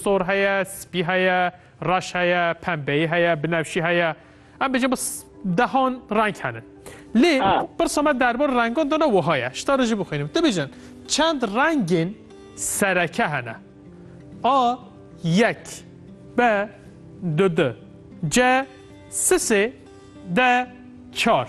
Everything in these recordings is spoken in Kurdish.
Sor heye, spî heye, reş heye, pembeyî heye, binefşî heye. Em bêjin bi dehan reng hene. Lê pirsa me derbar rengan de ne wiha ye. Ji te re jî bixwînim. Tu bêjin çend rengên sereke hene? A yek B du du C si sê D çar.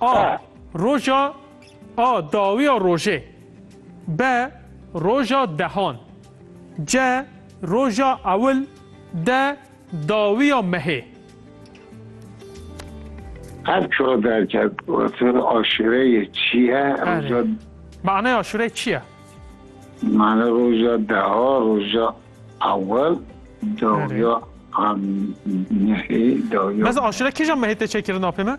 A. Roja A. Dawiya rojê B. Roja dehan C. Roja ewil D. Dawiya mehê Her çar derket gotin aşureyê çi ye? Roja Manaya aşureyê çi ye? Mane roja deha, roja ewel, dawiya mehê, dawiya... Mez aşure kîjan mehê tê çêkirin apê me?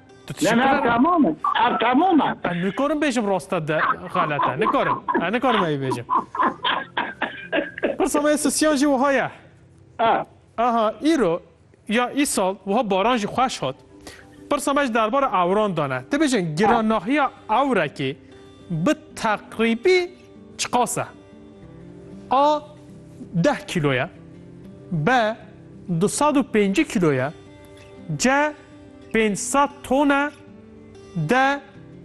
Tu Ne ne ev temam e. Ev temam e. Ez nikarim bêjim rasta de xelet e. Nikarim. Ez nikarim evî bêjim. Pirsa me ya sisiyan jî wiha ye. Aha îro ya îsal wiha baran jî xweş hat. Pirsa me ji derbara ewran de ne. Dibêjin giranahiya ewrekê bi teqrîbî Çiqas e? A deh kîlo ye, B du sed û pêncî kîlo ye, C pênc sed ton e, D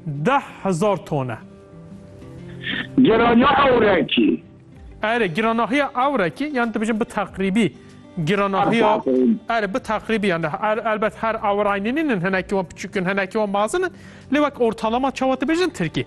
deh hezar ton e. Girana ewrekî. Erê, giranahiya ewrekî yan dibêjin bi teqrîbî giranahiya erê bi teqrîbî yan elbet her ewraynî nînin hinekî wan piçûk in hinekî wan mezin in lê wek ortalama çawa dibêjin tirkî.